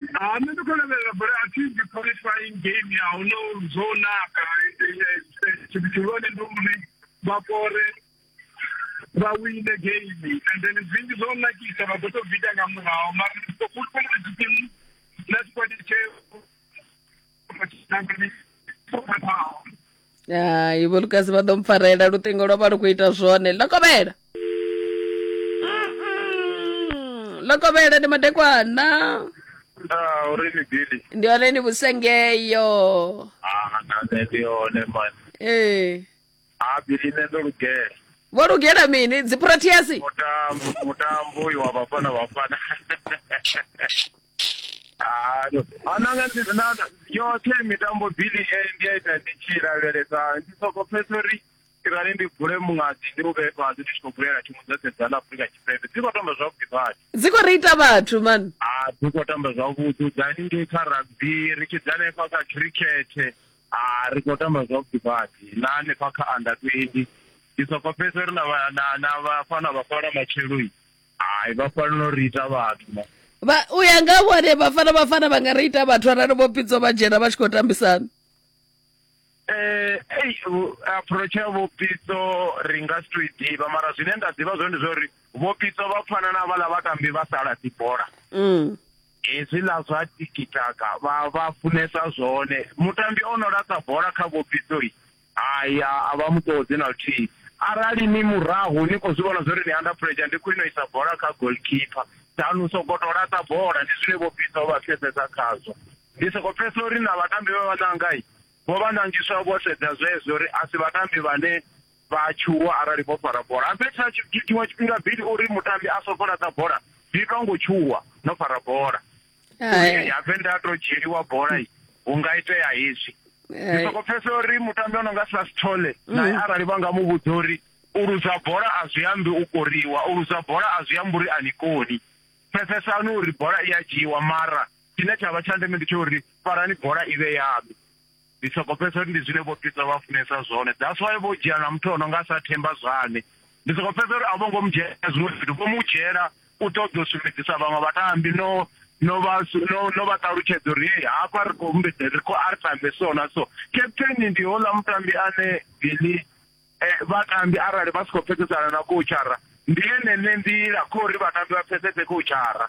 Ah, nṋe ndi khou lavhelela bola a thi ndi qualifying game ya hu no zwo naka tshithu tshihulwane ndi uri vha kore vha wine game and then zwinzhi zwo nakisa vha ḓo tou bvita nga murahu mara ndi ḓo fulufhela tshitimu na tshikwadi tsheo hai vho lukasi vha ḓo mpfarela luṱingo lwa vha lu khou ita zwone lokovhela Mm-mm. lokovhela ndi madekwana Ah, uri ni bili. ndi hone ni vhusengeyo Ah, na nṋe ndi hone man. ee ha bili nṋe ndo lugela vho lugela mini dziproteasi mutambo uyu wa vhafana vhafana ananga yoṱhe mitambo bili e ndi a ita ndi tshi lavhelesa ndi soko pfesa uri irali ndi bule muṅadzi ndi u vhee fhasi ndi tshi khou bulela thimu dza sedza ḽa afurika tshipembe dzi khou tamba zwavhuḓi badi dzi khou reita vhathu man a dzi khou tamba zwavhuḓi dza haningei kha rugby ri tshi dza hanefha kha cricket Ah, ri khou tamba zwavhuḓi badi na hanefha kha under 20 ndi soko pfesa ri na vha- na na vhafana vhafhala matsheloi hai vha fanela uri ita vhathu ma vha u ya nga ha vhone vhafana vhafana vha nga ri ita vhathu arali vho pidzo vha dzhena vha tshi khou tambisana Eh, ei, u- approach ya vhopitso ri nga si to i ḓivha mara zwine nda ḓivha zwone ndi zwa uri vhopitso vha pfana na vhala vhatambi vha sala dzi bola Mm. Hezwiḽa zwa tikitaka vha vha funesa zwone. Mutambi o no laṱa bola kha vhofhiso i, hai a a vha mu ṱoḓi na luthihi. Arali ni murahu ni khou zwi vhona zwa uri ni under pressure ndi khwine u isa bola kha goalkeeper than u sokou tou laṱa bola, ndi zwine vhofhiso vha pfesesa khazwo. Ndi sokou pfesesa uri na vhatambi vhe vha ṋanga i, vho vha ṋangiswa vho sedza zwezwo uri a si vhatambi vhane vha a tshuwa arali vho fara bola ha fhedzi na tshiṅwe tshifhinga bili uri mutambi a songo laṱa bola zwi itwa ngo tshuwa no fara bola ya venda to dzhieliwa bola hu nga itea hezwi ndi soko pfesa uri mutambi o no nga sasithole mm. naye arali vha nga mu vhudza uri u luza bola a zwi ambi u koriwa u luza bola a zwi ambi uri a ni koni pfesesani uri bola i a dzhiiwa mara tshine tsha vha tsha ndeme ndi tsha uri farani bola i vhe yaṋu Ndi soko pfesa uri ndi zwine vho Pita vha funesa zwone. That's why vho dzhia na muthu ono nga sa Themba Zwane. Ndi soko pfesa uri a vho ngo mu dzhia zwiṅwe zwithu vho mu dzhela u ṱoḓa u sumbedzisa vhaṅwe vhatambi no no vha no no vha ṱalutshedza uri hey hafha ri khou mbedza ri khou ari tambe so na so. Captain ndi hola mutambi ane Billy eh, vhatambi arali vha si khou pfesesana na coachara ndi ene ne nḓila khori vhatambi vha pfesese coachara.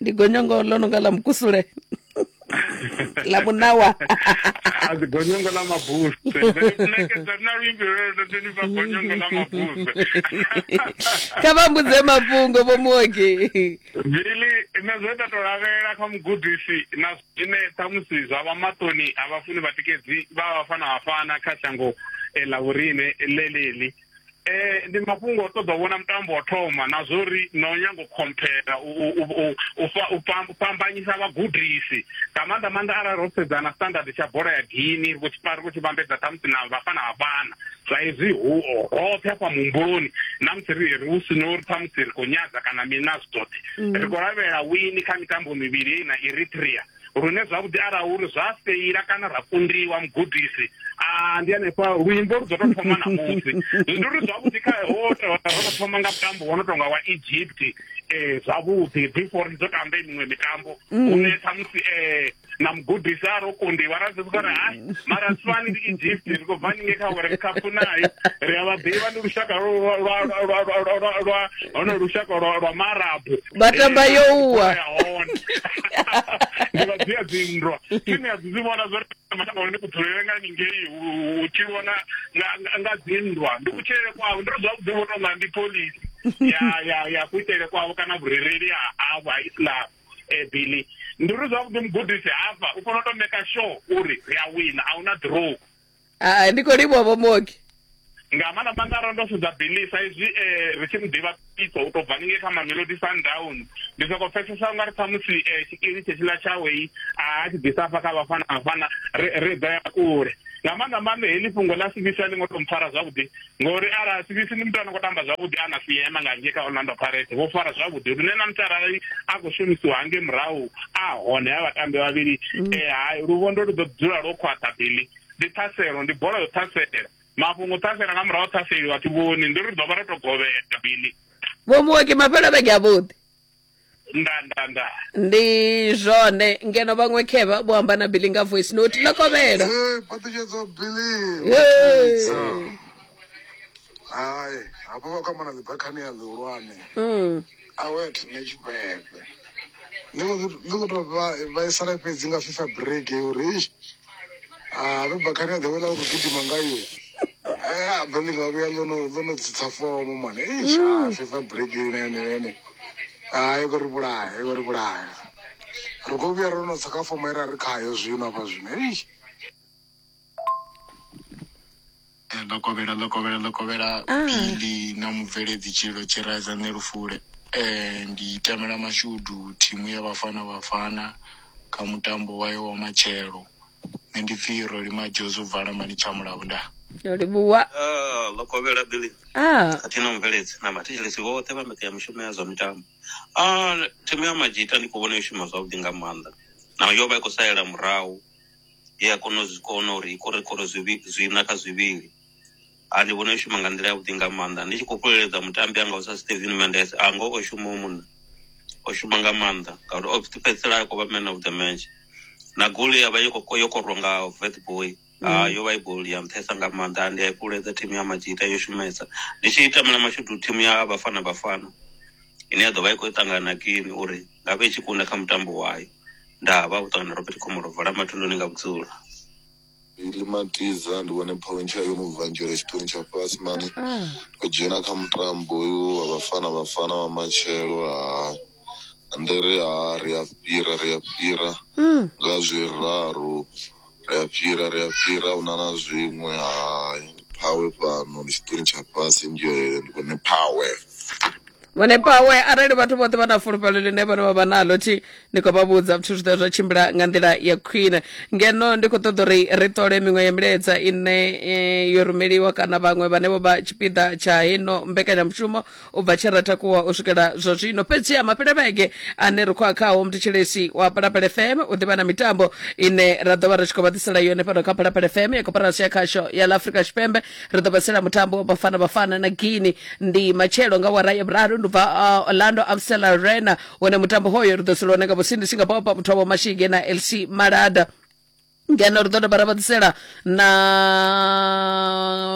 ndi gonyongo ḽo no nga ḽa mukusule ḽa munawa a dzi gonyongo ḽa mabuse nekedza na luimbi lwelwo ndi vha gonyongo ḽa mabuse kha vha mbudze mafhungo vho muoki bili nṋe zwe nda to lavhelela kha mugudisi na zwine ṱhamusi zwa vha maṱoni a vhafuni vhatikedzi vha vhafana vhafana kha shango eh, ḽa vhorine ḽeḽi eh ndi mafhungo o ṱoḓa u vhona mutambo wa thoma na zwo ri na u nyango khomphera u fhambanyisa vhagudisi nga maanḓa maanḓa arali ro sedza na standard tsha bola ya gini ri tshi ri tshi vhambedza khamusi na vhafana vhafana sa izwi hu roṱhe hafha muhumbuloni na musi ri ri hu sino uri khamusi ri khou nyadza kana mina zwi zwoṱhe mm. ri khou lavhelela wini kha mitambo mivhili na eritrea lune zwavhuḓi arali uri zwa feila kana ra kundiwa mugudisi a ndi hanefha luimbo lu dzo to thoma na musi ndi uri zwavhuḓi kha ho to thoma nga mutambo wo no tonga wa egypt um zwavhuḓi before ri dzo tamba miṅwe mitambo mm. une khamusi um na mugudisi a ro kundiwa ra zivhuka ri hai mara swani ndi egypt ri khou bva ninge kha world cup nayo ri a vha ḓivha ndi lushaka lwa hono lushaka lwa maarabu vha tamba yo uwa ndi vhadzia dzinndwa tshine a dzi dzi vhona zwo matanga hone kudzulele nga ningei u tshilwa nga nga dzinndwa ndi kutshilele kwavho ndi ri zwavhuḓi vho tonga ndi polisi ya ya ya kuitele kwavho kana vhurereli ha havho ha islam eh, billy ndi ri zwavhuḓi mugudisi hafha u fanela u to maker sure uri ri a wina a huna draw Ah, ndi khou livhuwa vho muoki nga maanḓa maanḓa ro ndo sedza billy sa izwi um ri tshi mu ḓivha pitso u tou bva ningei kha mamelodi sundown ndi sokou pfesesa unga ri khamusi um tshikili tshetshiḽa tshawei a tshi ḓisa afha kha vhafana vhafana ri ḓo ya kule nga maanḓa maanḓa heḽi fhungo ḽa sivisa ḽi ngo tou mpfara zwavhuḓi ngori arali sivisi ndi muthu ano khou tamba zwavhuḓi a na fiyema nga ngei kha orlando pirate vho fara zwavhuḓi lune na muthu arali a khou shumisiwa hange murahu a hone ha vhatambi vhavhili um mm. eh, hai luvhondo lu ḓo dzula lwo khwaṱha bili ndi ṱhaselo ndi bola yo ṱhasela mafhungo ṱhasela nga murahu ṱhaseli vhathu vhoni ndi ri ḓo vha ro to govhela bili vho muwaki mafhelo vhege a vhuḓi nda nda nda ndi zwone ngeno vhaṅwe khevha vho amba na billy nga voice note ḽa kovhela Eh, phaṱhutshedzo bili Hey. hai hafho vha kwamana ḽi bakhani ya ḽihulwane Mm. awet ne tshipembe ndi khou- ndi khou tou vha- vhaisala fhedzi nga fifa break uri ish Ah, Ruba khani the way la ku gidima ngayo. Ah, bani ga vhuya ḽo no ḽo no tsitsa fomo mwana. Eh, sha FIFA break ine ine ine. Ah, i khou ri vhulaya, i khou ri vhulaya. Ri khou vhuya ro no tsa kha fomo ye ra ri khayo zwino hafha zwino. Eish. Eh, ḽo kovhela ḽo kovhela ḽo kovhela Ah. bili na mubveledzi tshililo tshi raiza nṋe lufule eh, ndi tamela mashudu thimu ya vhafana vhafana kha mutambo wayo wa matshelo nṋe ndi pfi roli majozo vala mani tsha mulavo nda Ndo livhuwa. Ah, ḽo kovhela bili Ah. khathihi na mubveledzi na vhathetshelesi vhoṱhe vha mbekanyamushumo ya zwa mitambo Ah, thimu ya majita ndi khou vhona yo shuma zwavhuḓi nga maanḓa naho yo vha i khou salela murahu he ya kona u zwi kona uri i kore kore zwivhi- zwiṋa kha zwivhili ha ndi vhona i shuma nga nḓila yavhuḓi nga maanḓa ndi tshi khou fheleledza mutambi anga u sa steven mendes a ngo o shuma u munna o shuma nga maanḓa ngauri o fhedzisela a khou vha man of the match na goli ya vha yo khou- yo korwa nga vetboy Ah, yo vha i goli ya nṱhesa nga maanḓa ande ya fhululedza thimu ya majita yo shumesa ndi tshi tamela mashudu thimu ya bafana bafana ine ya ḓo vha i khou ṱangana na kini uri nga vhe i tshi kunda kha mutambo wayo nda havha vhuṱangana robert khomolo vola mathunduni nga vhudzulo ili matiza ndi vhone phontsha yo no bva nzhele tshiṱoni tsha fhasi mani o dzhena kha mutambo uyu wa vhafana vhafana vha matshelo ha ndere ha ri a fhira ri a fhira nga zwiraru Ri a fhira, ri a fhira, ahuna na zwiṅwe, hai. Phawe fhano, ndi tshiṱori tsha fhasi, ndi yone, ndi vhone phawe. Vhone phawe, arali vhathu vhoṱhe vha na fulufhelo ḽine vhone vha vha naḽo, thi, ndi khou vha vhudza, zwithu zwi ḓo zwa tshimbila nga nḓila ya khwine. Ngeno ndi khou ṱoḓa uri ri ṱole miṅwe ya milaedza ine eh, yo rumeliwa kana vhaṅwe vhane vho vha tshipiḓa tsha heno mbekanyamushumo, u bva tshe ra takuwa u swikela zwa zwino fhedzi ha mafhelevhege ane ri khou a khawo mthetshelesi wa phalaphala fm u ḓivha na mitambo ine ra ḓo vha ri tshi khou vha ḓisela yone fhano kha phalaphala fm ya koporasi ya khasho ya ḽa afrika tshipembe ri ḓo vha tsela mutambo wa bafana bafana na guini ndi matshelo nga wara ya vhuraru ndi bva uh, orlando amstel arena wone mutambo hoyo ri ḓo sela wone nga vhusindisi nga bopa muthu wavho mashige na lc malada ngeno ri ḓo dovha ra vha ḓisela na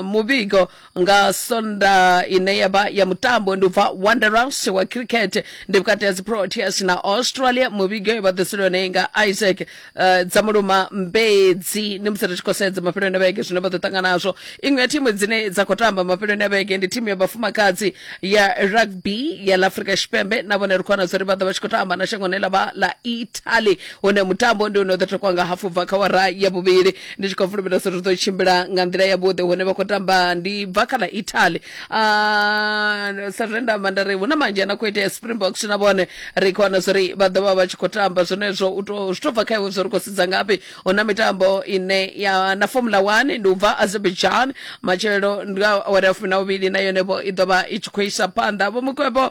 muvhigo nga sonda ine ya vha ya mutambo ndi u bva wanderers wa cricket ndi vhukati ha dziproteas na australia muvhigo yo vha ḓisela yone nga isaac uh, dza muluma mbedzi ndi musi ri tshi khou sedza mafheloni a vhege zwine vha ḓo ṱangana nazwo iṅwe ya thimu dzine dza khou tamba mafheloni a vhege ndi thimu ya vhafumakadzi ya rugby ya la afrika tshipembe na vhone ri khou wana zwa uri vha ḓo vha tshi khou tamba na shangoni ḽa vha ḽa italy hune mutambo ndi une u ḓo takwa nga hafu bva kha wara ya vhuvhili ndi tshi khou fulufhela uri ḓo tshimbila nga nḓila yavhuḓi hune vha khou tamba ndi bva kha ḽa italy Ah, sa zwe nda amba nda ri hu na manzhi ana khou itea springboks na vhone ri khou wana zwori vha ḓo vha vha tshi khou tamba zwenezwo u to zwi to bva kha iwe zwo ri khou sedza ngafhi hu na mitambo ine ya na formula one ndi u bva azerbaijan matshelo ndi nga awara ya fumi na vhuvhili na yone vho i ḓo vha i tshi khou isa phanḓa vho mukwevho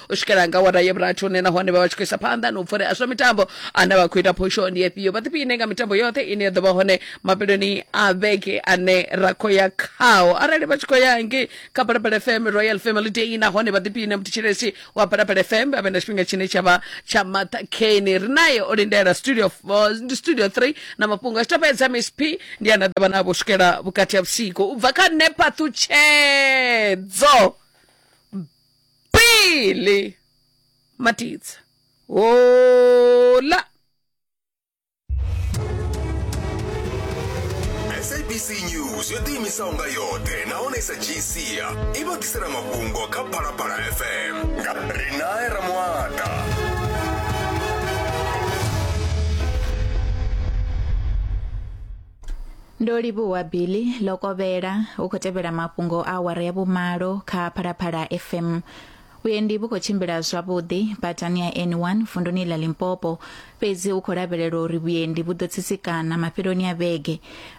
u swikela nga wara ya vhurathi hune nahone vha vha tshi khou isa phanḓa na u pfurea zwa mitambo ane vha khou ita phosho ndi efhio vha ḓiphiine nga mitambo yoṱhe ine ya ḓo vha hone mafheloni a vhege ane ra khou ya khao arali vha tshi khou ya ngei kha balabala fm royal family day nahone vha ḓiphiine muthetsheleshi wa balabala fm a vhe na tshifhinga tshine tsha vha tsha maṱhakheni ri naye o lindela studio f- uh, ndi studio 3 na mafhungo a tshitapedza miss p ndi ana ḓavha navho u swikela vhukati ha vhusiku u bva kha nepathutshedzo pele matitsa hola sabc news yo ḓiimisaho nga yoṱhe nahone sa gcia i vha ḓisela mafhungo kha phalaphala fm nga rinae ramuata ndo livhuwa billy ḽo kovhela u khou tevhela mafhungo a awara ya vhumalo kha phalaphala fm vhuendi vhu khou tshimbila zwavhuḓi badani ya n1 vunduni ḽa limpopo fhedzi u khou lavhelelwa uri vhuendi vhu ḓo tsitsikana mafheloni a vhege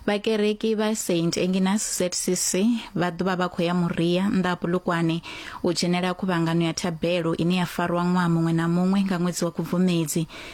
vhakereki vha st enginas zcc vha ḓovha vha khou ya muria nnḓa ha bulukwane u dzhenela khuvhangano ya thabelo ine ya farwa ṅwaha muṅwe na muṅwe nga ṅwedzi wa khubvumedzi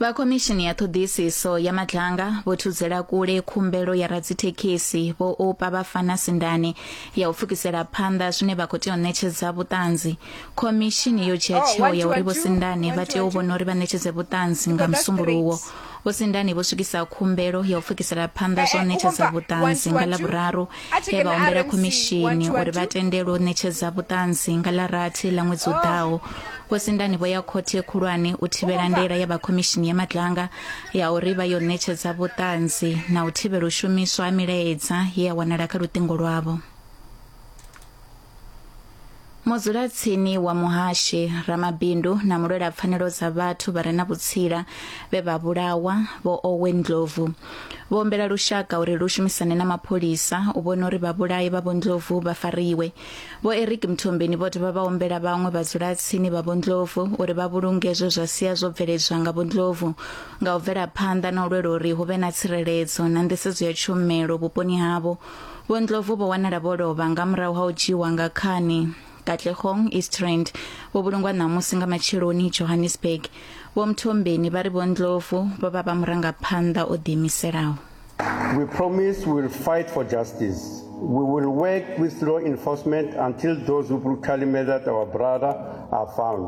vha khomishini ya ṱhoḓisiso ya madlanga vho thudzela kule khumbelo ya radzithekhisi vho opa vha fana sindane ya u pfukisela phanḓa zwine vha khou tea u ṋetshedza vhuṱanzi khomishini yo dzhia oh, tsheo ya uri vho sindane vha tea u vhona uri vha ṋetshedze vhuṱanzi nga musumbuluwo Vhusindani vho swikisa khumbelo ya u pfukisela phanḓa zwa u ṋetshedza vhuṱanzi nga ḽa vhuraru he vha humbela khomishini uri vha tendelwe u ṋetshedza vhuṱanzi nga ḽa rathi ḽa ṅwedzi u oh. ḓaho vhusindani vho ya khothe khulwane u thivhela ndela ya vha khomishini ya madlanga ya uri vha yo ṋetshedza vhuṱanzi na u thivhela u shumiswa ha milaedza ye ya wanala kha luṱingo lwavho mudzulatsini wa muhashi ramabindu na mulwela pfanelo dza vhathu vha re na vhutsila vhe vha vhulawa vho owen ndlovu vho ombela lushaka uri lu shumisane na mapholisa u vhona uri vhabulayi vha vhondlovu vha fariwe vho eric mthombeni vho dovha vha ombela vhaṅwe vhadzulatsini vha vhondlovu uri vha vhulunge zwe zwa sia zwo bveledzwa nga vhondlovu nga u bvela phanḓa na u lwela uri hu vhe na tsireledzo na nḓisedzo ya tshumelo vhuponi havho Vho Ndlovu vho wanala vho lovha nga murahu ha u dzhiiwa nga khani. Katlehong Eastrand vho vhulungwa ṋamusi nga matsheloni Johannesburg. Vho Mthombeni vha ri Vho Ndlovu vho vha vha murangaphanḓa o ḓiimiselaho. We promise we will fight for justice. We will work with law enforcement until those who brutally murdered our brother are found.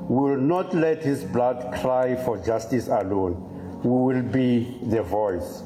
We will not let his blood cry for justice alone. We will be the voice.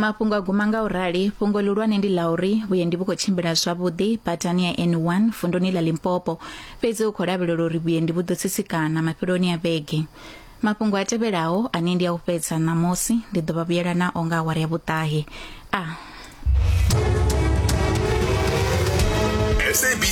mafhungo a guma nga u rali fhungo lihulwane ndi ḽa uri vhuendi vhu khou tshimbila zwavhuḓi badani ya n1 vunduni ḽa limpopo fhedzi hu khou lavhelela uri vhuendi vhu ḓo tsitsikana mafheloni a vhege mafhungo a tevhelaho ane ndi a u fhedza ṋamusi ndi ḓo vha vhuyela nao nga awara ya vhuṱahe a SABC